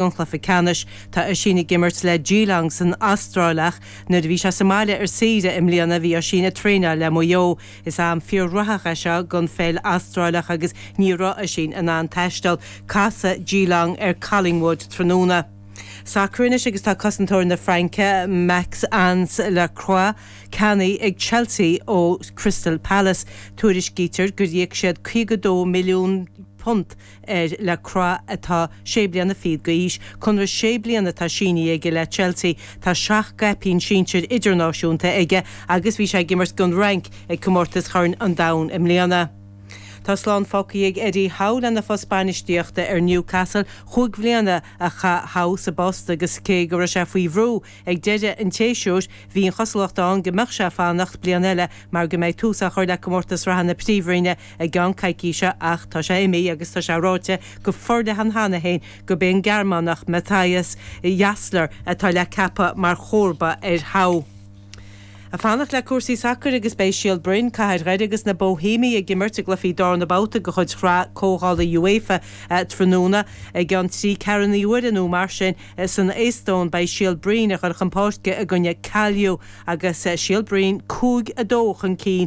an chluiche ceannais. Tá Oisín ag imirt le Geelong san Astráil ach nuair a bhí sé sa mbaile ar saoire i mbliana bhí Oisín ag traenáil le Maigh Eo. Is am fíorghraitheach é seo don pheil Astráileach agus ní raibh Oisín in ann taisteal. Casfaidh Geelong ar Collingwood tráthnóna. Sacar anois agus tá cosantóir na Fraince, Maxence Lacroix, ceannaithe ag Chelsea ó Crystal Palace. Tuairiscítear gur íoc siad £52 milliún ar Lacroix atá sé bliana fichead d'aois. Conradh sé bliana atá sínithe aige le Chelsea. Tá seacht gcaipín sinsir idirnáisiúnta aige agus bhí sé ag imirt don Fhrainc ag Comórtas Chorn an Domhain i mbliana. Tá slán fágtha ag Eddie Howe lena phost bainistíochta ar Newcastle. Chúig bhliana a chaith Howe sa bpost agus cé go raibh sé faoi bhrú ag deireadh an tséasúir, bhí an chosúlacht ann go mbeadh sé ag fanacht bliain eile mar go mbeidh tús á chur le Comórtas Sraithe na Príomhroinne i gceann coicíse ach tá sé imithe agus tá sé ráite go forleathan cheana féin gurb é an Gearmánach Matthias Jaissle atá le ceapadh mar chomharba ar Howe. Ag fanacht le cúrsaí sacair agus beidh Síol Broin, Cathair Dhoire agus na Bóihéimigh ag imirt i gcluichí darna babhta de chuid Shraith Comhdhála UEFA tráthnóna. I gceann trí ceathrúnaí uaire nó mar sin san Éastóin beidh Síol Broin ag cur chun páirce i gcoinne Kalju agus Síol Broin cúig a dó chun cinn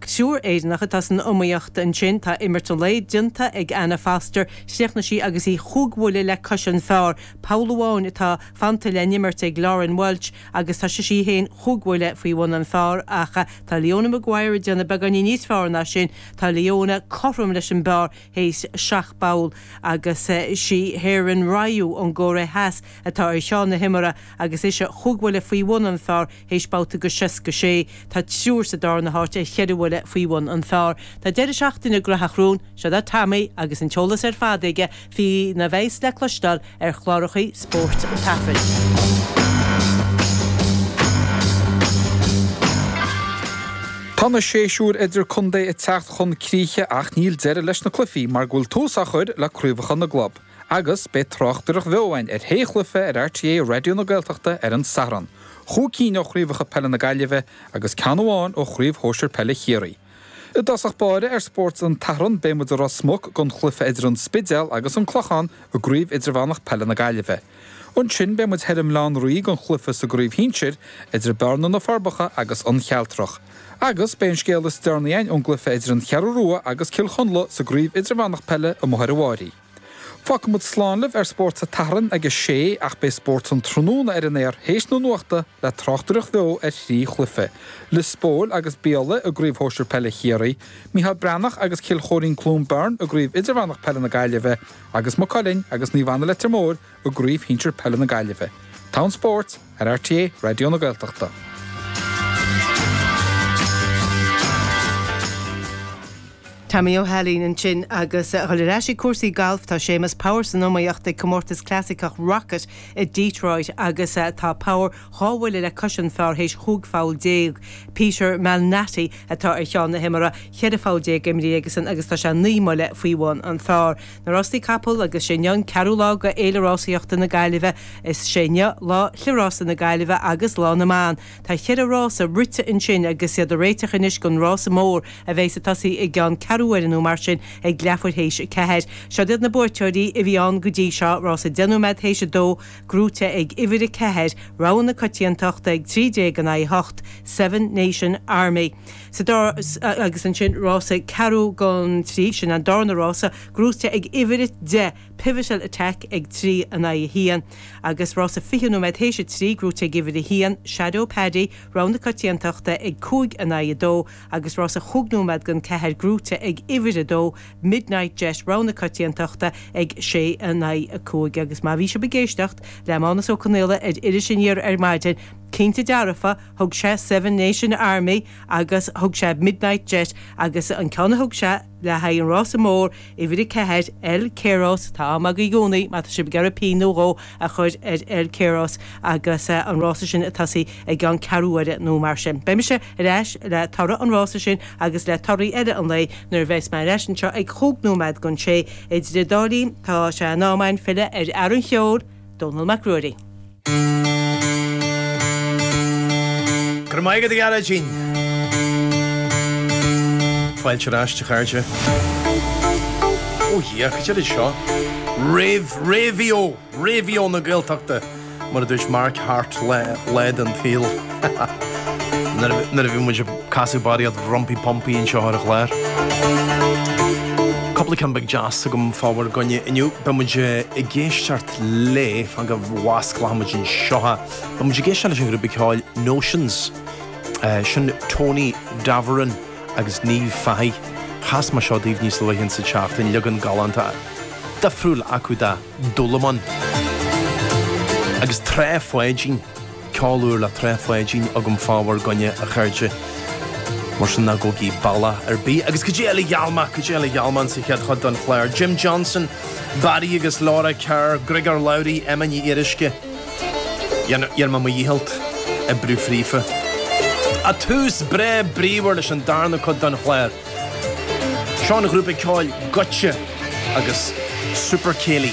Triúr Éireannach atá san iomaíocht ansin. Tá imirt an lae déanta ag Anna Foster, chríochnaigh sí agus í chúig bhuille le cois an phar, poll amháin atá fanta le n-imirt ag Lauren Walsh agus tá sise í féin chúig bhuille faoi bhun an phar ach tá Leona Maguire ag déanamh beagáinín níos feárr ná sin. Tá Leona cothrom leis an bpar théis seacht bpoll agus sí Haeran Ryu ón gCóiré Theas atá ar cheann na himeartha agus ise chúig bhuille faoi bhun an phar. Théis babhta de 66, tá triúr sa darna háit ar cheithre bhuille faoi bhun an phar. Tá deireadh seachtaine graitheach romhainn. Seod é Tommy agus an t-eolas ar fad aige faoina bheas le cloisteáil ar chláracha spóirt an tSathairn. Tá na séisiúir idir contae ag teacht chun críche ach níl deireadh leis na cluichí mar go bhfuil tús á chur le craobhacha na gclub. Agus beidh tráchtaireacht bheo againn ar shé chluife ar RTÉ Raidió na Gaeltachta ar an Satharn, chúig cinn ó chraobhacha peile na Gaillimhe agus ceann amháin ó Chraobh Shóisir Peile Chiarraí. I dtosach báire ar Spórt an tSathairn beidh muid i Ros Muc don chluife idir an Spidéal agus an Clochán i gCraobh Idirmheánach Peile na Gaillimhe. Ansin beidh muid thoir i mBaile Átha an Rí don chluife sa gCraobh Shinsir idir Bearna-Na Forbacha agus An Chealtrach. Agus beidh an scéal is deireanaí againn ón gcluiche idir an Cheathrú Rua agus Cill Chonla sa gCraobh Idirmheánach Peile amuigh ar an bhFairche. Fágfaimid slán libh ar Spórt an tSathairn ag a sé ach beidh Spórt an tráthnóna ar an aer théis na nuachta le tráchtaireacht bheo ar thrí chluiche, Lios Póil agus Biaille i gCraobh Shóisir Peile Chiarraí, Micheál Breathnach agus Cill Choirín-Cluain Bheirn i gCraobh Idirmheánach Peile na Gaillimhe agus Maigh Cuilinn agus Naomh Anna-Leitir Móir i gCraobh Shinsir Peile na Gaillimhe. An spórt ar RTÉ Raidió na Gaeltachta. Tommy Ó hAilín ansin agus a dhul ar ais ag cúrsaí gailf, tá Séamus Power san iomaíocht ag Comórtas Clasaiceach Rocket i Detroit agus tá Power dhá bhuille le cois an phar théis chúig pholl déag. Peter Malnati atá ar cheann na himeartha, cheithre pholl déag imrithe aigesan agus tá sé naoi mbuille faoi bhun an phar. Na Rástaí Capall agus Is é inniu an ceathrú lá de Fhéile Rásaíochta na Gaillimhe. Is é inniu lá Chliathrás na Gaillimhe agus Lá na mBan. Tá cheithre rása rite ansin agus iad ag réiteach anois don rása mór a bheidh ag tosaí i gceann ceathrú uaire nó mar sin ag leathuair théis a ceathair. Siod iad na buaiteoirí a bhí ann go dtí seo, Rása deich nóiméad théis a dó, gnóite ag uimhir a ceathair, Rogha na Coitiantachta ag trí déag in aghaidh a hocht, Seven Nation Army. Sa dara agus ansin rása ceathrú gon trí, sin an darna rása, gnóite ag uimhir a deich, Pivotal Attack ag trí in aghaidh a haon, agus rása fiche nóiméad théis a trí, gnóite ag uimhir a haon, Shadow Paddy, Rogha na Coitiantachta ag cúig in aghaidh a dó, agus rása chúig nóiméad gon ceathair, gnóite ag uimhir a dó, Midnight Jet, Rogha na Coitiantachta ag sé in aghaidh a cúig. Agus má bhí sibh ag éisteacht le Mánus Ó Conaola ar Iris Aniar ar maidin, cinnte dearfa, Thug sé Seven Nation Army agus thug sé Midnight Jet agus an ceann a thug sé le haghaidh an rása mór uimhir a ceathair, El Keros, tá am agaibh i gcónaí má tá sibh ag iarraidh pingin nó dhó a chur ar El Keros agus an rása sin ag tosaí i gceann ceathrúuaire nó mar sin. Beidh mise ar ais le toradh an rása sin agus le torthaí eile an lae nuair a bheas mé ar ais anseo ag chúig nóiméad gan sé. Idir an dá linn tá sé in am againn filleadh ar fhear an cheoil, Dónal Mac Ruairí. Go raibh maith agat a Ghearóidín! Fáilte ar ais, a chairde. Ó dhia, caidé rud é seo? Réimh, réimhíó, réimhíó na Gaeltachta, mar a dúirt Mark Hart le, le an tail. Nuair a bhí muid ag casadh Barry Kerr rompy pompy anseo ar an chlár. Cúpla ceann beag deas agam fá bhur gcoinne inniu. Beidh muid ag éisteacht leofa nuair a fhosclóchaidh muid anseo. Beidh muid ag éisteacht leis an ghrúpa ceoil Notions. Sin Tony Davoren agus Niamh Fahey. Chas mé seo daoibh níos luaithe insa tseachtain. Leagan galánta difriúil acu de Dúlamán. Agus Tráigh Pháidín. ceol úr le tréith Pháidín agam fá bhur gcoinne a chairde mar sin ná gabhaigí bealach ar bith agus caidé eile a gheall mé caidé eile a gheall mé insa chéad chuid don chlár Jim Johnson, Barry agus Laura Kerr, Gregor Lowry, Emma Ní Fhíoruisce, dhéanfaidh mé mo dhícheallt oibriú fríofa. A tús breá bríomhar leis an darna cuid don chlár seo ón ghrúpa ceoil Goitse agus Super Céilí.